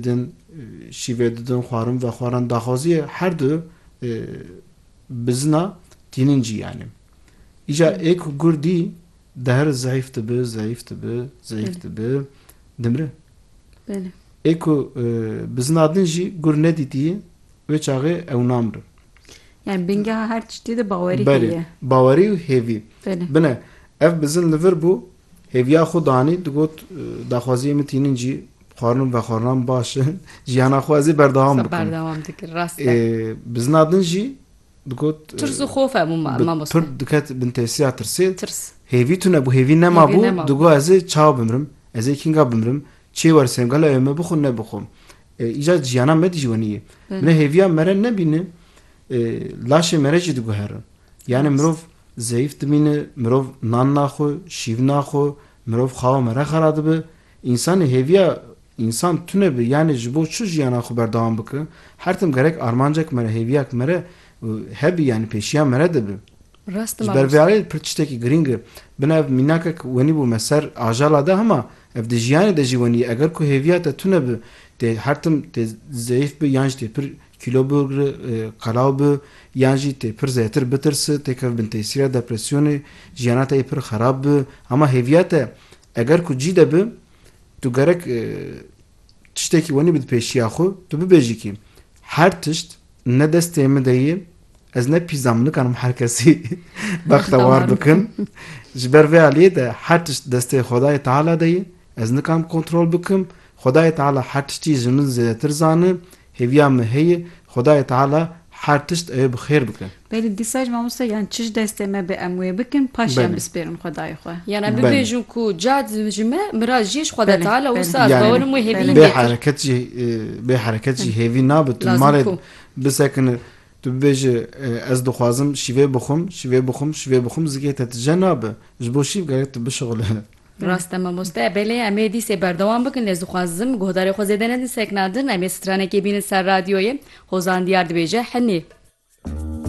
Din şîvê didin xwarin vexwaran daxwaziyê her du bizina tînin cî yanî. Îca ê ku gur dî deher zeîf dibi, zeîf dibi, zeîf dibi, dimri. Ê ku bizina din jî gur nedîtiyî wê çaxê ew namrin. Yani bingeha her tiştî de bawerî heye. Belê, bawerî û hêvî. Bine ev bizin li vir bû hêviya xwe danî digot daxwaziyê min tînin cî. Xwarin û vexwarinan baş in. Jiyana xwe ez ê berdewam bikim. Berdewam dikir, rast e. Bizina din jî digot... Tirs û xof hebû mamoste. Pirr diket bin tesiya tirsê. Tirs. Hêvî tune bû, hêvî nema bû. Digot ez ê çawa bimirim, ez ê kînga bimirim, çê wersêm, gelo ew ê me bixwe nebixwe. Îcar jiyana me dijî wenî ye. Min e hêviya me re nebîne, laşê me re jî diguherin. Yanî mirov zeyîf dimîne, mirov nan naxwe, şîv naxwe, mirov xawa me re xera dibe. Însanê hêviya însan tune bi yanê ji bo çi jiyana xwe berdewam bike, her tim gerek armancek mere, hêviyak mere hebi yanê pêşiya mere de bi. Rast e mamoste. Ji ber vê alê pir tiştekî girîng e. Bina ev mînakek wenî bû me ser ajala de hema ev di jiyanê de jî wenî ye. Eger ku hêviya te tune bi, tê her tim tê zeyîf bi yan jî tê pir kîlo bigri, qelaw bi yan jî tê pir zêtir bitirsi, têkeve bin tesîra depresyonê, jiyana te yê pir xerab bi. Hema hêviya te Eger ku cî de bi, tu gerek tiştekî wenî bi di pêşiya xwe, tu bibêjî kî her tişt ne destê min de yê, ez ne pîzam, nikarim her kesî bextewar bikim. Ji ber vê aliyê de her tişt destê Xwedayê Teala de yê, ez nikarim kontrol bikim. Xwedayê Teala her tiştî ji min zêdetir zane, Hêviya me heye Xwedayê Teala her tişt ew bi xêr bike. Belê dîsa jî mamoste yan çi ji destê me be em wê bikin paşê em bispêrin Xwedayê xwe. Yan em bibêjin ku ca ji me miraz jî ji Xweda Teala û wisa ez bawer im wê hêviyî bê hereket jî bê hereket jî hêvî nabe tu malê bisekine tu bibêje ez dixwazim şîvê bixwim şîvê bixwim şîvê bixwim zikê te tije nabe ji bo şîv gerek tu bişixule. Rast e mamoste, belê em ê dîsê berdewam bikin lê ez dixwazim guhdarê xwe zêde nedin sekna din, em ê stranekê bînin ser radyoyê, Hozan Diyar dibêje Hinî.